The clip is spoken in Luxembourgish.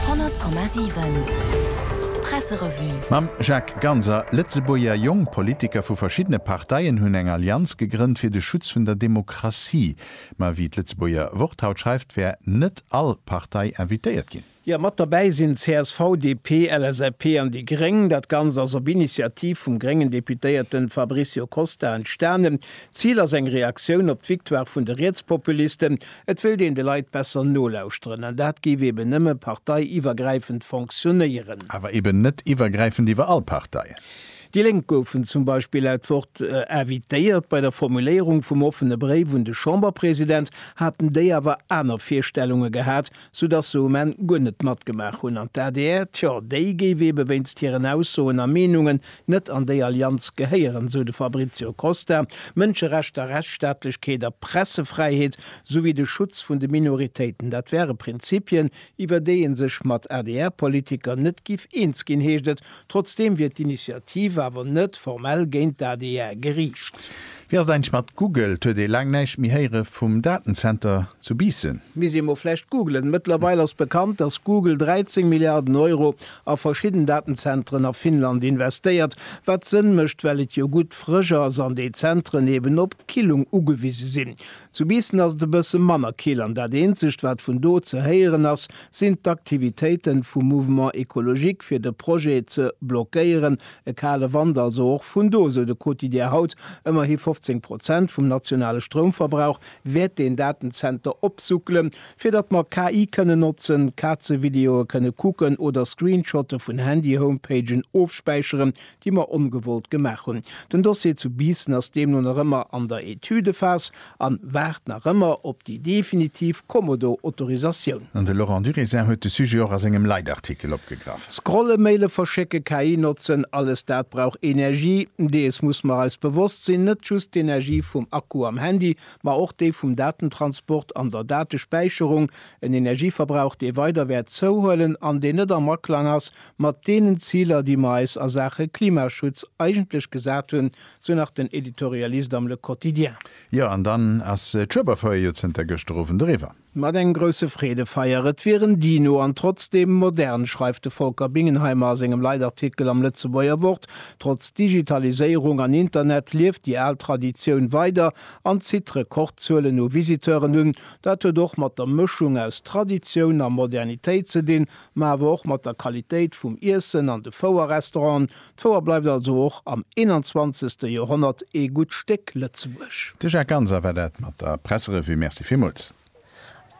100,7 Presserevue. Mam Jacques Ganser, Lëtzebuerger jonk Politiker vu verschiddene Parteien hunn eng Allianz gegrënnt fir de Schutz vun der Demokratie. Ma wéi d'Lëtzebuerger Wort haut schreift, wär net all Partei invitéiert ginn. Jo, mat derbäi sinn csv, DP, LSAP an déi gréng. Dat Ganzt ass op Initiativ vum gréngen Deputéierten Fabricio Costa entstanen. D'Zil ass eng Reaktioun op d'Victoire vun de Rietspopulisten. Et wéilt een de Leit besser nolauschteren an dat géif eben nëmme parteiiwwergräifend fonctionnéieren. Awer eben net iwwergräifend iwwer all Partei. Déi Lénk goufen zum Beispill laut Wort invitéiert. Bei der Formuléierung vum offene Bréif un de Chamberpresident haten déi awer aner Virstellunge gehat. soudatt se um Enn guer net matgemaach hunn an d'ADR, tjo, déi géif eebe wéinst hiren Aussoen a Meenungen net an déi Allianz gehéieren, sou de Fabrizio Costa. Mënscherechter, Rechtsstaatlechkeet a Pressefräiheet, souwéi de Schutz vun de Minoritéiten, dat wäre Prinzipien, iwwer déi ee sech mat ADR-Politiker net giff eens ginn, heescht et. Trotzdeem wier d'Initiativ awer net formell géint d'ADR geriicht. Wéi ass et eigentlech mat Google? Et huet ee laang näischt méi héiere vum Datenzenter zu Biissen. Misst ee mol vläicht googlen. Mëttlerweil ass bekannt, dass Google 13 Milliarden Euro a verschidden Datenzentren a Finnland investéiert. Wat Sënn mécht, well et jo gutt frësch ass an déi Zentren eben op d'Killung ugewise sinn. Zu Biissen ass et e bësse manner kill an dat eenzegt, wat vun do ze héieren ass, sinn d'Aktivitéiten vum Mouvement Ecologique fir de Projet ze blockéieren, E kale Wand also och vun do, sou de Quotidien haut. Ëmmerhi 15 Prozent vum nationale Stroumverbrauch wäert deen Datenzenter opsuckelen. Fir datt mer KI kënnen notzen, Kazevideoe kënne kucken oder Screenshotte vun Handy-Homepagen ofspäicheren, déi mer ongewollt gemaach hunn. Den Dossier zu Biissen ass deemno nach ëmmer an der Etüdephas. an waart nach ëmmer op déi definitiv Kommodo-Autorisatioun. An de Laurent Durézin huet de Sujet och a sengem Leitartikel opgegraff. Scrollen, Maile verschécken, KI notzen, alles dat brauch Energie. Dees muss mer eis bewosst sinn, net just d'Energie vum Akku am Handy, ma och déi vum Datentransport an der Datespäicherung, en Energieverbrauch dee weider wäert zouhuelen an deen net am Aklang ass mat deenen Ziler déi mer eis a Saache Klimaschutz eigentlech gesat hunn, Sou nach den Editorialist am Le Quotidien. Jo, an dann ass d'Schueberfeier jo zënter gëschter Owend eriwwer. Mat engem grousse Freedefeier, et wier en Dino an trotzdeem modern, schreift de Volker Bingenheimer a sengem Leitartikel am Lëtzebuerger Wort. Trotz Digitaliséierung an Internet lieft déi al Traditioun weider an zitt Rekordzuelen u Visiteuren un. Dat huet och mat der Mëschung aus Traditioun a Modernitéit ze dinn, ma awer och mat der Qualitéit vum Iessen an de Fouerrestauranten, D'Fouer bleift also och am 21. Joerhonnert ee gutt Stéck Lëtzebuerg. De Jacques Ganser war dat mat der Presserevue. Merci villmools.